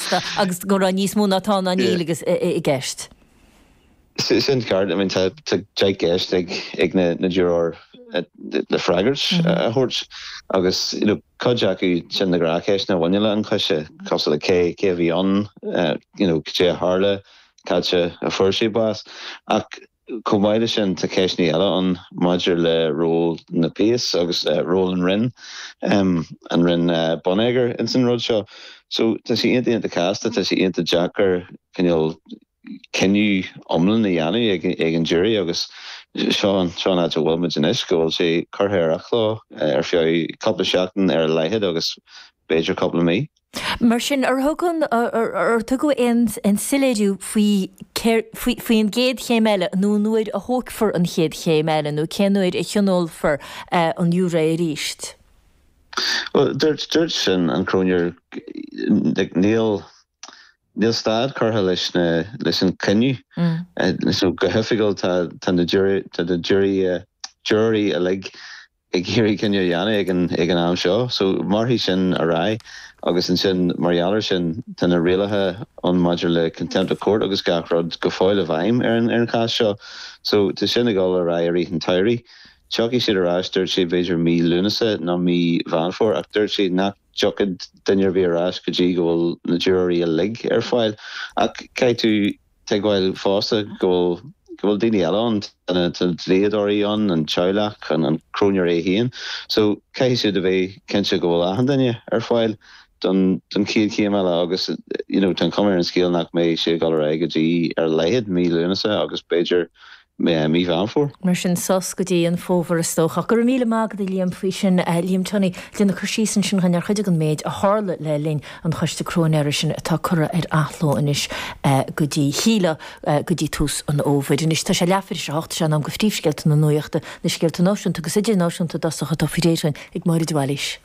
Sea, agus go raibh níos mó ná tá nó níl i gceist. Sin ceart, I mean tá deich gceist ag na giúróirí le freagairt a thabhairt agus you know cuid acu sin na gnáthcheisteanna a bhaineann le an coiste, cosúil le cé a bhí ann, you know caidé a tharla, cá háit a fuair sé bás. Ach Chomh maith le sin tá ceisteanna eile ann maidir le ról na bpéas agus ról an Roinn, an Roinn Bonneagair ins an rud seo. So tá sé iontach, iontach casta, tá sé iontach deacair cineál cinneadh iomlán a dhéanamh ag, ag an jury agus seo, seo an áit a bhfuilmid anois go bhfuil sé curtha ar athló ar feadh cúpla seachtain ar a laghad agus b'fhéidir cúpla mí. Mar sin, ar thug an, ar tugadh aon soiléiriú faoi cér, faoi an gcéad chéim eile nó an uair a thógfar an chéad chéim eile nó cén uair a thionólfar an giúiré arís? Bhuel, dúirt, dúirt an Cróinéir, like, níl, níl stad curtha leis na, leis an cruinniú. So go hoifigiúil tá, tá na jury, tá na jury, jury uilig ag iarraidh cinneadh a dhéanamh ag an am seo. So mairfidh sin ar aghaidh agus ansin mar gheall ar sin tá na rialacha ann maidir le contempt of court agus gach rud go fóill i bhfeidhm ar an chás seo. So tá sin ag dul ar aghaidh i rith an tsamhraidh. Tiocfaidh siad ar ais dúirt sé b'fhéidir mí Lúnasa nó mí Mheán Fómhair ach dúirt sé nach dtiocfadh duine ar bith ar ais go dtí go bhfuil na giúróirí uilig ar fáil. Ach caithfidh tú. tuigbheáil fosta go bhfuil, go bhfuil daoine eile ann, tá na dlíodóirí ann, an teaghlach, an cróinéir é féin. So, caithfidh siad a bheith cinnte go bhfuil achan duine ar fáil don, don chéad chéim eile agus, you know, tá an chuma ar an scéal nach mbeidh sé ag dul ar aghaidh go dtí ar a laghad mí Lúnasa agus b'fhéidir meán mí Mheán Fómhair. Mar sin, sos go dtí an fómhar is dócha. Go raibh míle maith agat, a Liam, faoi sin. Liam Tunney, ag déanamh cur síos ansin againn ar chuid de an méid a tharla le linn an choiste cróinéara sin atá curtha ar athló anois go dtí, shílfeá, go dtí tús an fhómhair. Anois tá sé leathuair théis a hocht, is é in am do phríomhscéalta na nuachta, na scéalta náisiúnta agus idirnáisiúnta, i dtosach, atá faoi réir againn ag Máire de Bhailís.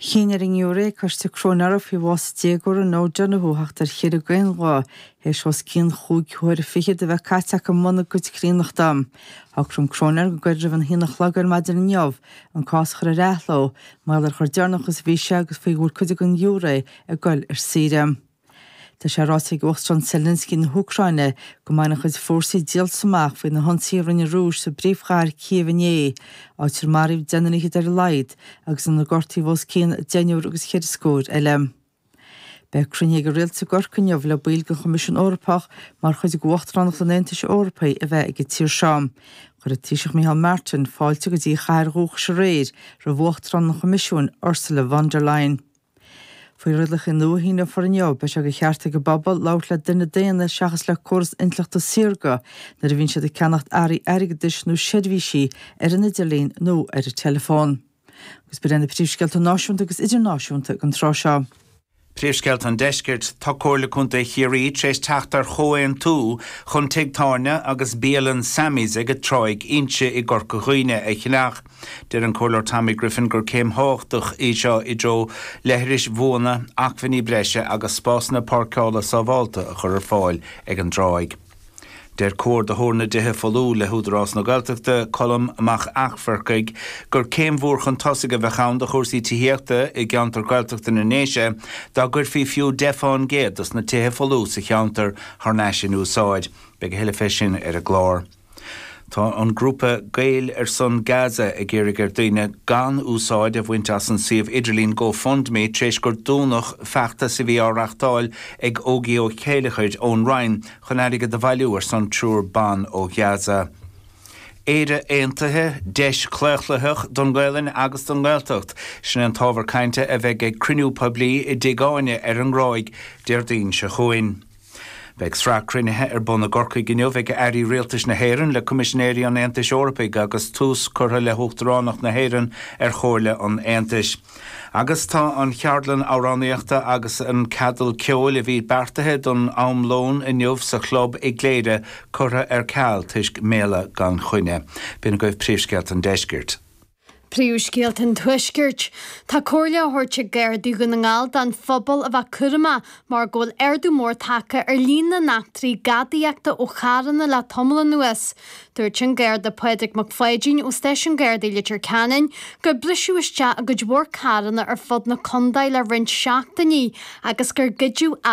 Chinn ar an ngiúiré coiste cróinéara faoi bhás an déagóra Noah Donohoe theacht ar chinneadh d'aon ghuth, théis os cionn chúig huaire fichead a bheith caite acu i mbun a gcuid críonnachta. Shocraigh an cróinéir go gairid roimh an haon a chlog ar maidin inniu an cás a chur ar athló, mar gheall ar chomh deireanach is a bhí sé agus faoi go bhfuil cuid den ghiúiré ag goil ar saoire. Tá sé ráite ag Uachtarán Zelensky na hÚcráine go mbainfidh a chuid fórsaí díoltas amach faoi na hionsaithe a rinne an Rúis sa bpríomhchathair Kyiv inné, áit ar maraíodh deichniúr fhichead ar a laghad agus inar gortaíodh os cionn deichniúr agus ceithre scór eile. Beidh cruinniú ag an Rialtas i gCorcaigh inniu le baill den Choimisiún Eorpach mar chuid de Uachtaránacht an Aontais Eorpaigh a bheith ag an tír seo. Chuir an Taoiseach Micheál Martin fáilte go dtí a chathair dhúchais aréir roimh Uachtarán an Choimisiúin, Ursula von der Leyen. Faoi rialacha nua a síníodh fóir inniu, beidh sé de cheart ag an bpobal labhairt le duine daonna seachas le córas intleachta saorga nuair a bhíonn siad ag ceannacht earraí airgeadais nó seirbhísí ar an idirlíon nó ar an teileafón. Agus b'in iad na príomhscéalta náisiúnta agus idirnáisiúnta ag an tráth seo. Príomhscéalta an Deiscirt, Tá Comhairle Contae Chiarraí tar éis teacht ar chomhaontú chun tigh tábhairne agus bialann Sammy's ag Tráigh Inse i gCorca Dhuibhne a cheannach. Deir an Comhairleoir Tommy Griffin gur céim thábhachtach í seo i dtreo leithris bhuana, acmhainní breise agus spásanna páirceála sábhálta a chur ar fáil ag an dtráigh. Deir Comhordaitheoir na dTithe Folú le hÚdarás na Gaeltachta, Colm Mac Eachmharcaigh, gur céim mhór chun tosaigh a bheadh ann do chúrsaí tithíochta i gceantar Gaeltachta na nDéise dá gcuirfí fiú 10 fán gcéad dos na tithe folmha sa cheantar thar n-ais in úsáid. Beidh a thuilleadh fé sin ar an gclár. Tá an grúpa Gaeil ar son Gaza ag iarraidh ar dhaoine gan úsáid a bhaint as an suíomh idirlín GoFundMe tar éis gur dúnadh feachtas a bhí á reachtáil ag Ógie Ó Céilleachair ón Rinn chun airgead a bhailiú ar son triúr ban ó Ghaza. Éire Aontaithe, Deis Chlaochlaitheach don nGaelainn agus don nGaeltacht, sin an t-ábhar cainte a bheidh ag cruinniú poiblí i dTigh Áine ar an nGráig Déardaoin seo chugainn. Beidh sraith cruinnithe ar bun i gCorcaigh inniu ag Airí Rialtais na hÉireann le Coimisinéirí an Aontais Eorpaigh agus tús curtha le hUachtaránacht na hÉireann ar Chomhairle an Aontais. Agus tá an cheardlann amhránaíochta agus an ceadal ceoil a bhí beartaithe don am lóin inniu sa Chlub i gCléire curtha ar ceal toisc méala gan choinne. B'in agaibh príomhscéalta an deiscirt. Príomhscéalta an Tuaiscirt, Tá comhairle á thabhairt ag Gardaí Dhún na nGall don phobal a bheith cúramach mar go bhfuil ardú mór tagtha ar líon na n-eachtraí gadaíochta ó charranna le tamall anuas. Dúirt an Garda Pádraig Mac Pháidín ó Stáisiún Gardaí Leitir Ceanainn gur briseadh isteach i gcuid mhór carranna ar fud na condae le roinnt seachtainí agus gur goideadh